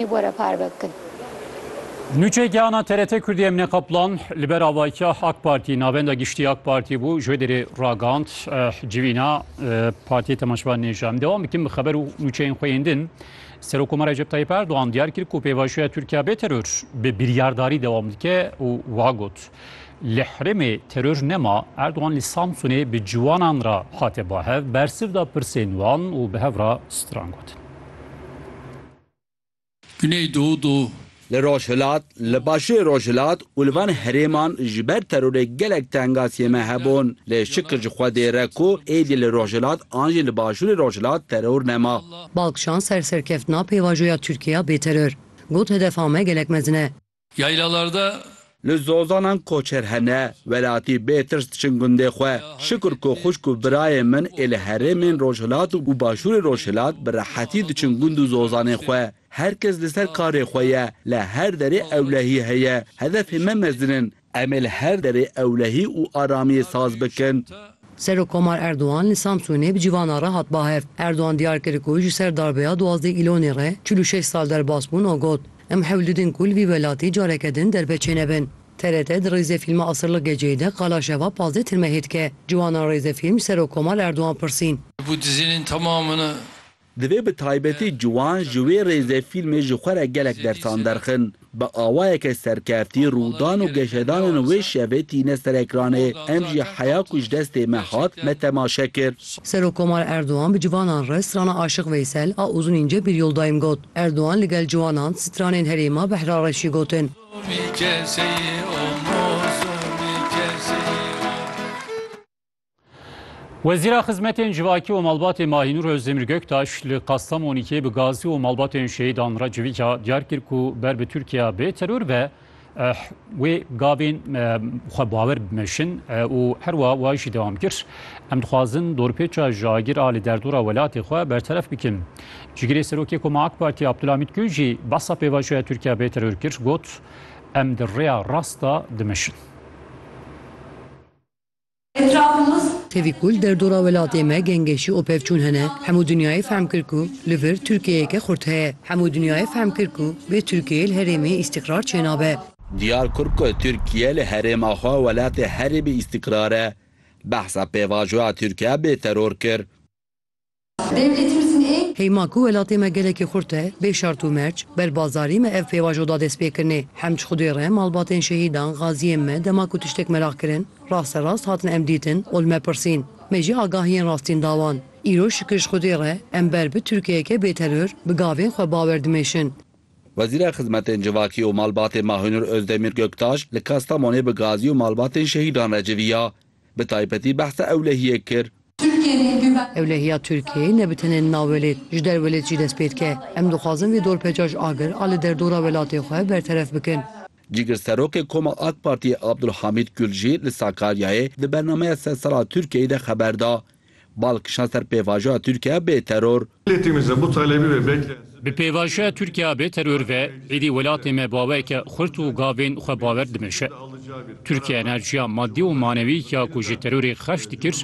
Were parve bikin. Nûçeyeke ana TRT Kurdî Emîne Kaplan li ber avahiya AK Partî, Navenda Giştî ya AK Partî bû, ji wê derê ragand civîna Partiyê Temaşevan Nêja. Em dewam bikin bi xeber û nûçeyên xwe yên din. Serokkomar Recep Tayyîp Erdogan diyar kir ku pêvajoya Tirkiya bê teror bi biryardarî dewam dike û wiha got, Li herêmê teror nema. Erdogan li Samsunê bi ciwanan re hate bahev, bersiv da pirsên wan û bi hev re stran gotin. Güneydoğu. Li Rojhilat, li Başûrê Rojhilat û li van herêman ji ber terorê gelek tengasiyên me hebûn. Lê şikir ji Xwedê re ku êdî li Rojhilat an jî li Başûrê Rojhilat teror nema. Balkchan ser serkeftina pêvajoya Tirkiye ya bêteror, got hedefa me gelek mezin e. Yaylalarda. Li Zozanan koçer hene, welatî bê tirs diçin gundê xwe. Şikur ku xwişk û birayên min ê li herêmên rojhilat û başûrê rojhilat bi rehetî diçin gund û zozanên xwe. Her kes li ser karê xwe ye, li her derê ewlehî heye. Hedefê me mezin in. Em ê li her derê ewlehî û aramiyê saz bikin. Serokkomar Erdogan li Samsûnê bi civana re hat bahev. Erdogan diyar kir ku ji ser darbeya duwazdeh Îlonê re çil û şeş sal derbas bûn û got, Em hewl didin ku li vî welatî careke din derbe çênebin. TRT di rêzefîlma Asırlık Geceyi de qala şeva pazdeh tirmehê dike. Ciwanan rêzefîlm ji Serokkomar Erdogan pirsîn. Ji bo dizînên temamin e Divê bi taybetî ciwan ji wê rêzê fîlmê ji xwe re gelek dersan derxin. Bi awayeke serkeftî rûdan û geşedanên wê şevê tîne ser ekranê. Em jî heya ku ji destê me hat, me temaşe kir. Serokkomar Erdogan bi civanan re strana Aşiq Veysel a Uzun ince bir yoldayım got. Erdogan li gel ciwanan stranên herêma Behra re jî gotin. Wezîra Xizmetên Civakî û Malbatê Mahînûr Özdemir Göktaş li Kastamonîkê bi gazî û malbatên şehîdan re civîka diyar kir ku ber bi Tirkiya bê teror be wê gavên xwe bawer bimeşin û herwa wa jî dewam kir. Em dixwazin dorpêça ji agir a li derdora welatê xwe berteref bikin. Cigirê Serokê Koma AK Partî Abdulhamîd Gül jî behsa pêvajoya Tirkiya bê teror kir got, Em di rêya rast de dimeşin. Etrabulus. Tevî ku li derdora welatê me gengeşî û pevçûn hene, hemû dinyayê fehm kir ku li vir Tirkiyeyeke xurt heye. Hemû dinyayê fehm kir ku bê Tirkiyeyê li herêmê îstîqrar çênabe. Diyar kir ku Tirkiye li herêma xwe welatê herêmê îstîqrar e. Behsa pêvajoya Tirkiye bê teror kir. Heyma ku welatê me gelekî xurt e, bê şart û merc, ber bazarî me ev pêvajo da dest pê kirinê. Hemd ji Xwedê re malbatên şehîdan, gaziyên me dema ku tiştek meraq kirin, rasterast hatin em dîtin û li me pirsîn. Me jî agahiyên rastîn da wan. Îro şikir ji Xwedê re em ber bi Tirkiyeyeke bê teror, bi gavên xwe bawer dimêşin. Wezîra Xizmetên Civakî û Malbatê Mahinur Ozdemir Göktaş li Kastamonê bi gazî û malbatên şehîdan re civiya. bi taybetî behsa ewlehiyê kir. Ewlehiya Tirkiyeyê ne bi tenê nav welêt, ji der welêt jî dest pê dike. Em dixwazin vê dorpêça ji agir a li derdora welatê xwe berteref bikin. Cîgirserokê Koma AK Partiyê Abdulhamîd Gul jî li Sakaryayê di bernameya sersala Tirkiyeyê de xeber da. Bal kişand ser pêvajoya Tirkiye bê teror. Bi pêvajoya Tirkiye bê teror ve êdî welatê me baweke xurt û gavên xwe bawer dimeşe. Tirkiye enerjiya madî û manewî ya ku ji terorê xerç dikir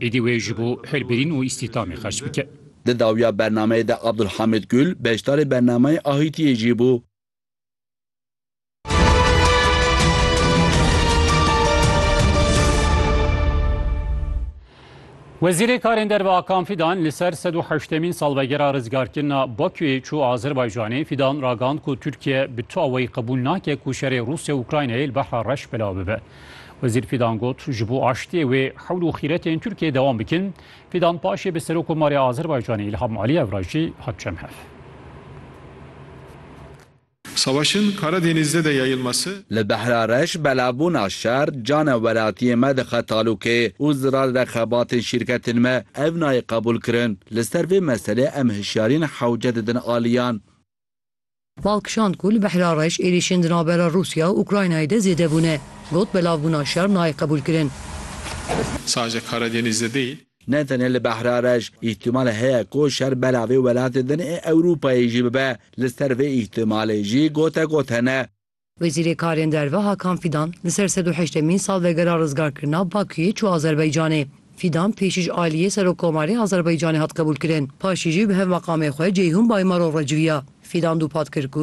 êdî wê ji bo hilbirîn û îstîhdamê xerç bike. Di dawiya bernameyê de Abdulhamid Gul beşdarê bernameyê Ahîtiyê jî bû. Wezîrê Karên Derve Hakan Fîdan li ser sed û heştemîn salvegera rizgarkirina Bakuyê çû Azerbaycanê Fîdan ragand ku Tirkiye bi tu awayî qebûl nake ku şerê Rûsya û Ukraynayê li Behra Reş belav bibe. Wezîr Fîdan got ji bo aştiyê wê hewl û xîretên Tirkiyeyê dewam bikin. Fîdan paşê bi Serokomarê Azerbaycanê Îlham Aliyev re jî hat cem hev. Savaşın Karadeniz'de de yayılması. Li Behra Reş belabûna şer cana welatiyên me dixe talûkê û zirar re xebatên şîrketên me ev nayê qebûl kirin. Li ser vê meselê em hişyariyên hewce didin aliyan. Mal kişand ku li Behra Reş êrîşên di navbera Rûsya û Ukraynayê de zêde bûne. Got belavbûna şer nayê qebûl kirin. Sadece Karadeniz'de değil. Ne tenê li Behra Reş, îhtimalê heye ku şer bela vê welatê din ê Ewropayê jî bibe. Li ser vê îhtimalê jî gote got hene. Wezîrê Karên Derve Hakan Fîdan li ser sed û heştemîn salvegera rizgarkirina Bakuyê çû Azerbaycanê. Fîdan pêşî ji aliyê Serokkomarê Azerbaycanê hat qebûlkirin, paşî jî bi hev meqamê xwe Ceyhun Baymaro re civiya. Fîdan dûpat kir ku,